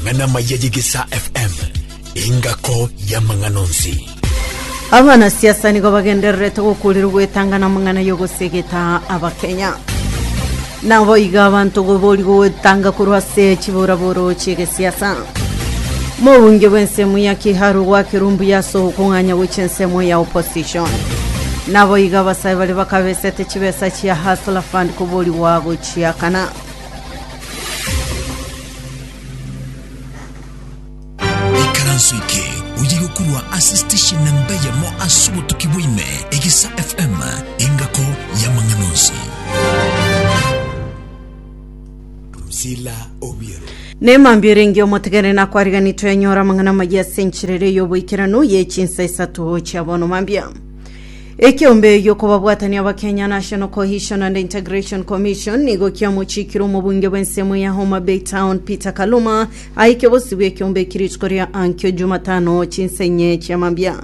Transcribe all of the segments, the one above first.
Ng'ana maya y'Egesaa FM, engako y'amang'ana onsi. Abanasiasa nigo bagendererete gokurirwa gwetanga namang'ana y'ogosegeta abakenya nabo iga abanto gobori gogwetanga korwa ase chiboraboro chiegesiasa mobunge bw'ensemo ya kiharu gwakirwa mbuya ase okong'anya gochia ensemo ya opposition nabo iga abasae bare bakabesete chibesa chia hasla fund koborigwa gochiakana Ikaranso eke oye gokurwa ase station na mbe yamo ase obotuki bwaime egesa FM engako y'amang'ana onsi. Drusilla Obiero. Nemambia erenge omotegene nakwariganitwe enyora amang'ana amaya ase enchera ere y'oboikeranu ye chinsa isato chia bono mambia Ekeombe giokobabwatania Abakenya National Cohesion and Integration Commission nigo kiamochiikire omobunge bw'ensemo ya Homa Bay Town Peter Kaluma aike bosibwa ekeombe eki rituko ria ankio Jumatano chinsa inye chia mambia.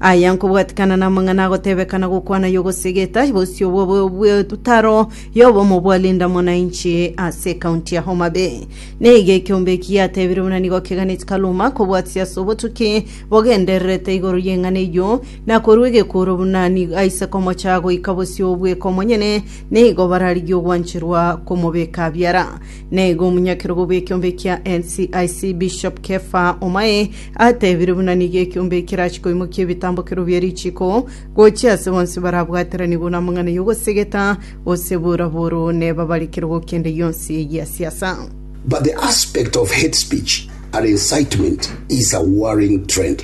Aya nkobwatikana namang'ana agotebekana gokwana yogosegeta bosio bw'etaro y'obomo bwa Linda Mwananchi ase ekaunti ya Homa Bay. Nigo ekeombe eki giatebire buna nigo keganeti Kaluma kobwatisia ase obotuki bogendererete igoro y'eng'ana eyio na korwa egekuro buna nigo aise komocha goika bosio obweka omonyene, nigo bararigie ogwancherwa komobeka biara. Na igo omonyakerogo bw'ekiombe kia NCIC, Bishop Kefa Omae, atebire buna nigo ekiombe ekerache koimokia ebitambokero bie richiko gochia ase bonsi barabwateranigwe namang'ana y'ogosegeta, gose boraboro nebabare kerogo kende gionsi gia siasa. But the aspect of hate speech and incitement is a worrying trend.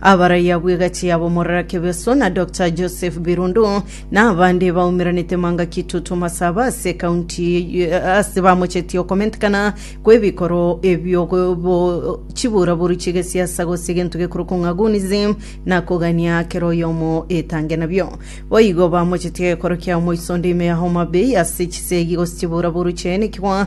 Abaraiya bw'egachi ya Bomorara Kebeso na Doctor Joseph Birundu na abande baumeranete manga kitutu masaba ase county ase bamochetie okomentekana kw'ebikoro ebio bo chiburaburu chigesiasa gose egento gekorokwa ng'a gunism na kogania kera oyomo etange nabio. Boigo bamochetie gekoro kia omoiso onde ime ya Homa Bay ase chisegi gose chiburaburu chiaye nekigwa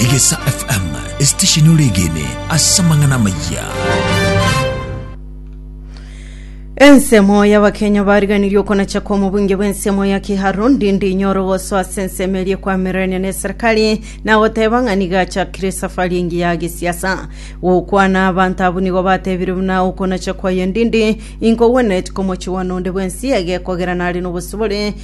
Egesa FM, esitesheni ore egene ase amang'ana amayia. Ensemo y'Abakenya bariganirie okonacha kw'omobunge bw'ensemo ya Kiharu ndindi inyore ogosoa ase ensemo eria ekwamererania na eserikari na goteba ng'a nigo achakire esafari engiya ya gesiasa. Gokwana abanto abwo nigo batebire buna okonacha kwaye ndindi inkogwenereti komochie bwane onde bwensi egekogera nare nobosibore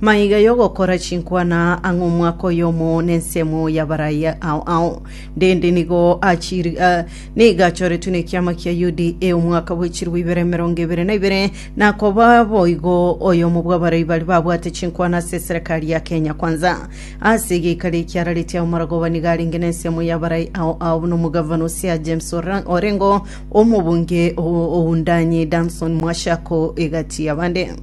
Maiga y'ogokora chinkwana ang'e omwaka oyomo nensemo y'abaraia ao ao. Ndende nigo achiri- ah, nigo achoretwe nekiama kia UDA omwaka bwe chilifu ibere emerongo ebere na ibere, na akoba boigo oyomo bw'abarai baria babwate chinkwana ase eserekari ya Kenya Kwanza. Ase egeikari eki arareti ao Maragoba nigo arenge nensemo y'abarai ao ao buna omogavana o Siaya James Ora- Orengo, omobunge o Oundani Danson Mwashako, egati y'abande.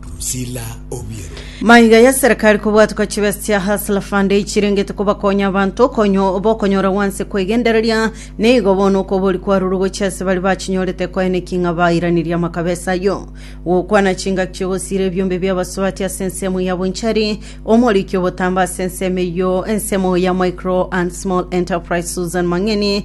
Drusilla Obiero. Maiga ya serikali kobwatwa chibesa chia Hustler Fund echirengete kobakonya abanto konyo bokonyora gwanse kwegendereria nigo bono okobori kwarure gochia ase bari bachinyorete koeneki ng'a bairanirie amakabesa ayio gokwana chingaki chigosiira ebiombe bi'abasubati ase ensemo ya bonchari omoriki obotambe ase ensemo eyio ensemo ya micro and small enterprise Susan Mang'eni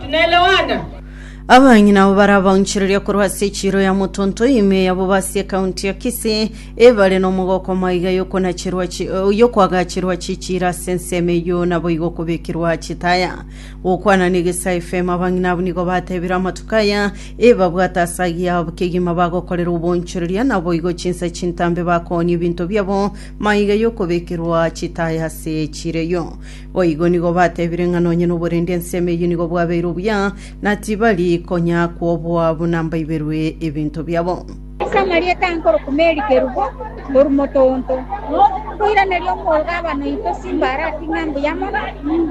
Tunaelewana? Abang'ina abo baria baunchereria korwa ase echiiro ya Motonto ime eyabo b'ase ekaunti ya Kisii ebare nomogoka omaiga y'okonacherwa chi- eh, y'okoagacherwa chichiira ase ensemo eyio naboigo okobekirwa chitaya gokwana na Egesaa FM abang'ina abwo nigo batebire amatuko aya ebabwate ase agiya abwo kegima bagokorera oboonchoreria naboigo chinsa chintambe bakoonia ebinto biabo maiga y'okobekirwa chitaya ase echiiro eyio Boigo nigo batebire ng'a nonye noborende ensemo eyio nigo bwabeire obuya, na tibari konya kwoboa buna mbaiberwe ebinto biabo. Ase amarieta aa nkorokwa Mary Kerubo korwa Motoonto, nkoiraneria omogabaa noito Simbarati ng'a mbuya mono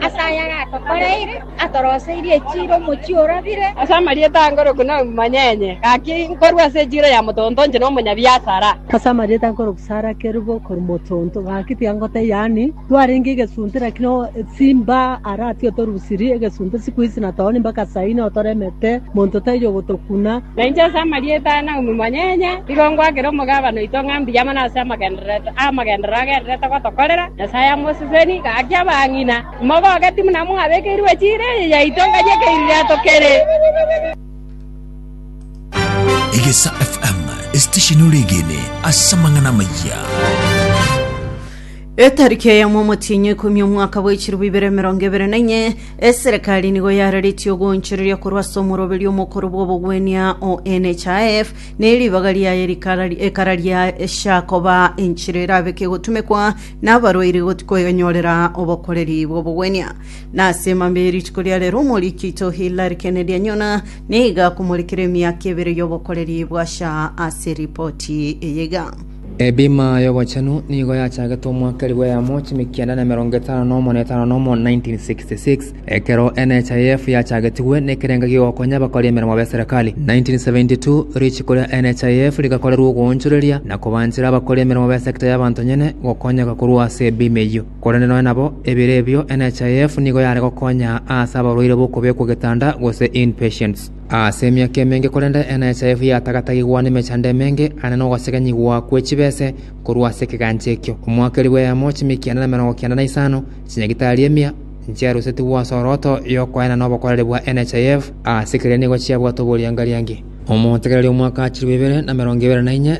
ase ayare atokoreire, atoroseirie echiira omochie orabire, Ase amarieta aa nkorokwa Naomi Manyenye, gaki nkorwa ase echiira ya Motoonto inche nomonyabiasara. Ase amarieta nkorokwa Sarah Kerubo korwa Motoonto, gaki tiga ngotebia ani Twarenge egesunte, lakini o esimba ara atiga torusiri egesunte siku ici na tooni mpaka saa ine otoremete, monto taiyo gotokuna. Na inche ase amarieta aya na omomanyenye nigo ngoakera omogabane oito ng'a mbuya mono ase amagenderero amagenderero agendererete gotokorera Nyasae amoseseni gaki abang'ina. Imogoke timbe nabo mwabekeirwe chiira eye yaito ngaki ekeiriri atokere. Egesa FM, esitesheni ore egene ase amang'ana amayia. Etariki eye mw'omotienyi oikomi omwaka bwa echirobu ibere emerongo ebere na inye, eserekari nigo yararetie ogoonchoreria korwa ase omoroberio omokoro bw'obogwenia o NHIF, na eribaga riaye rikara ekara ria esha koba enchera erabeke gotumekwa nabarwaire got koenyorera obokoreri bw'obogwenia. Na ase mambia ye rituko ria rero omoriki oito Hillary Kennedy anyona, na iga akomorekera emiaka ebere y'obokoreri bwa sha ase ripoti eye iga. Ebima y'Obochenu nigo yachagetwe omwaka elifu eyemo chiamia kianda na emerongo etano na omo na etano na omo, 1966, ekero NHIF yachagetigwe nekerengo gi'ogokonya abakori emeremo b'eserekari. 1972, richiko ria NHIF rigakorerwa ogoonchoreria na kobanchera abakori emeremo b'esekta y'abanto nyene gokonyeka korwa ase ebima eyio. Korende nonya nabo ebere ebio, NHIF nigo yare gokonya aase abarwaire b'okobekwa getanda gose in-patients. Ase emiaka emenge korende NHIF yatagatagigwa nemechando emenge ane nogosegenyigwa kwe chibese korwa ase ekegancha ekio. Omwaka eri bweyamo chimi kianda na emerongo kianda na isano chinyagitari emia nchiarusetigwe ase oroto yokoena nobokoreri bwa NHIF ase keria nigo chiabwate oboriangariangi. Omotegereri omwaka achirwe ibere na emerongo ibere na inye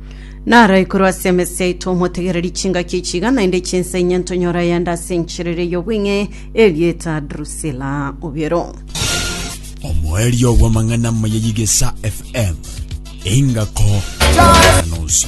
Naro igoro ase emese yaito omotegereri chingaki echiga naende chinsa inye ntonyora ayande ase encherere y'obweng'e erieta Drusila obiero. omoerio bw'amang'ana amaya y'igesa fm engako nosi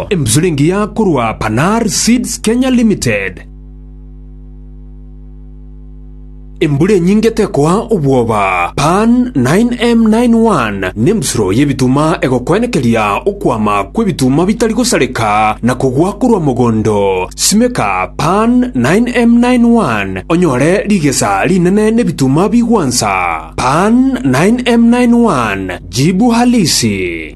Embusuro engiya korwa Panar Seeds Kenya Limited. Embura enyinge tekoa obwoba. Pan 9M91 nembusuro y'ebituma egokwenekeria okwama kw'ebituma bitari gosareka na kogwa korwa mogondo. Simeka Pan 9M91 onyore rigesa rinene n'ebituma bigwansa. Pan 9M91 jibu halisi.